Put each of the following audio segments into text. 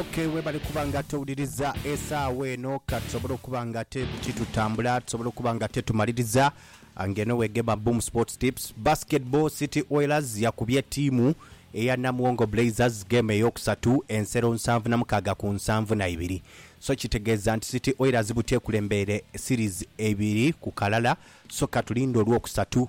Ok webale kuba nga towuliriza esaawa eno ka tusobole okuba nga ate buti tutambula tusobole okuba nga ate tumaliriza nga eno wegema Boom Sports Tips. Basketball City Oilers yakubye ttiimu eya Namuwongo Blazers geemu eyookusatu ensero nsanvu na mukaaga ku nsanvu na ibiri. So kitegeeza nti City Oilers buti ekulembeire series eibiri ku kalala so katulinde olwokusatu.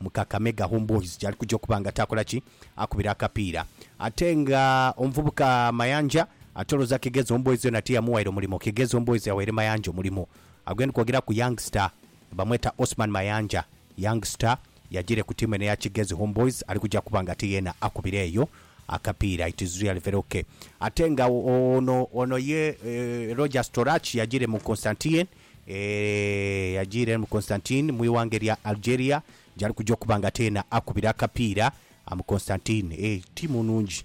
mu Kakamega Homeboyz gyali kugya okuba nga takola ki? Akubira akapiira. Ate nga omuvubuka Mayanja atoloza Kigezi Homeboyz yona tiyamuwaire omulimo, Kigezi Homeboyz yawaire Mayanja omulimo. Agho gendi kwogera ku Young Star bamweta Osman Mayanja. Young Star yagiire ku tiimu eno eya Kigezi Homeboyz ali kugya kuba nga ate yeena akubira eyo akapiira. It is really very ok. Ate nga ono ono ye Rogers Torach yagiire mu Constantien. Eeh, yajiira eno mu Constantine mu ighanga erya Algeria gyali kuja okuba nga teena akubira akapiira. Am Constantine, eeh, ttiimu nnungi.